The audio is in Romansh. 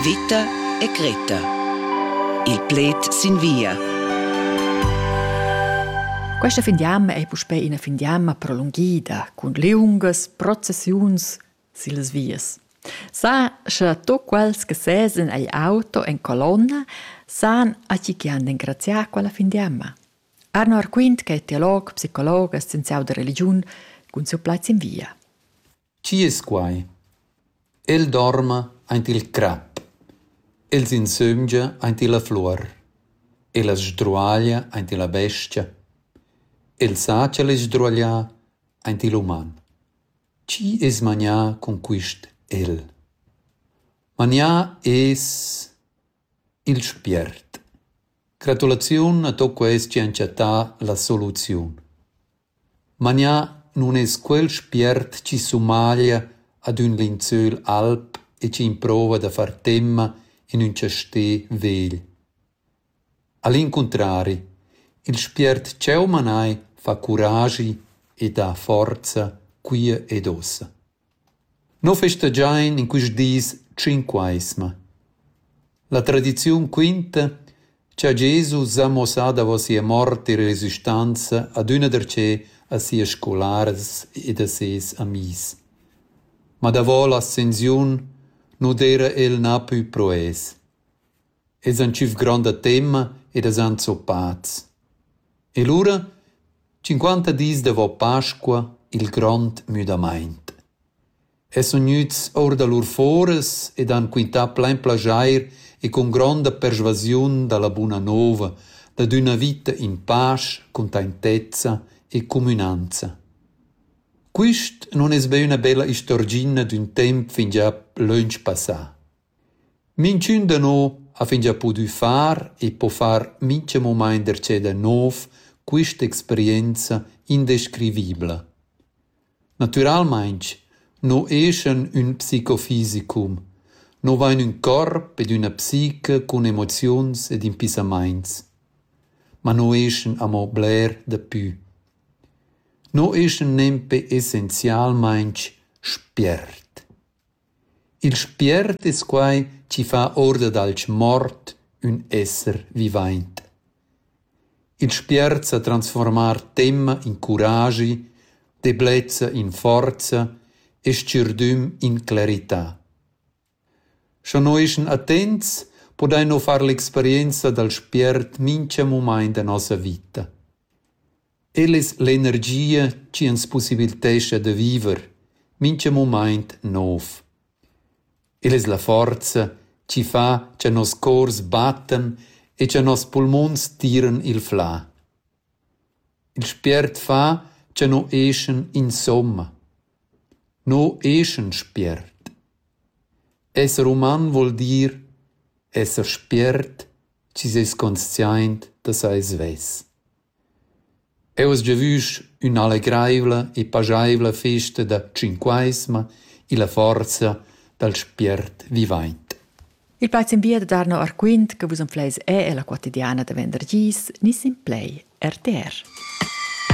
Vita e Greta. Il pled sin via. Questa fin d'anno è puspè ina fin d'anno prolunghida, cun lieungas processiuns sillas vias. Sa sche tu quels che sesan ei auto en colonna, san a chi che han d'engraziar quella fin d'anno. Arno Arquint, che è teolog, psicolog e scienziau da religiun, cun siu plaz in via. Chi es quai? El dorma aint il crap. Els insömgia aint illa fluor. El as sdruaglia aint illa bestia. El sa ch'el es sdruaglià aint il uman. Chi es manià cun quist el? Manià es il spiert. Gratulaziun a tuot quels chi han chattà la soluziun. Magnà nun es quel spiert chi sumaglia ad ün linzöl alb e chi improva da far temma in ün chastè vegl. A l'incuntrari, il spiert ch'eu manai fa curagi e dà forza quia ed ossa. Nus festagein in quist dis tschinqueisma. La tradiziun quinta cha Jesus ha muossà davo sia mort e resistanza adüna darcheu a sias scolaras ed a seis amis. Ma davo l'ascensiun nu d'eira el napü pro els. Els han tschüf gronda temma ed as han zuppats. E lura, tschinquanta dis davo Pasqua, il grond müdamaint. Els sun gnüts our da lur foras ed han quintà plain plaschair e cun gronda persvasiun da la buna nouva dad üna vita in pasch, cuntaintezza e cumünanza. Quist nun es be üna bella istorgina d'ün temp fingià lönch passà. Minchün da no ha fingià pudü far e po far mincha mumaint darcheu da nouv quist'experienza indescrivibla. Natüralmaing no eschan ün psicofisicum, no vain ün corp ed üna psiche cun emoziuns ed impissamaints. Ma no eschan amo bler dapü. No eschan nempe essenzialmaing spiert. Il spiert es quai chi fa ourda dalch mort ün esser vivaint. Il spiert sa transfuormar temma in curagi, deblezza in forza e s-chürdüm in clarità. Scha no eschan attents, podain no far l'experienza dal spiert mincha mumaint da nossa vita. El es l'energia chi ans pussibilitescha da viver mincha mumaint nouv. El es la forza chi fa cha noss cors battan e cha noss pulmuns tiran il flà. Il spiert fa cha no eschan insomma. No eschan spiert. Esser uman voul dir esser spiert chi s'es consciaint da sai svess. Eu as giavüsch ün'allegraivla e paschaivla festa da tschinquaisma illa forza dal spiert vivaint. Il plaz in via da Darno Arquint che vus am fleis è e la quotidiana da venderdis, nis in play RTR.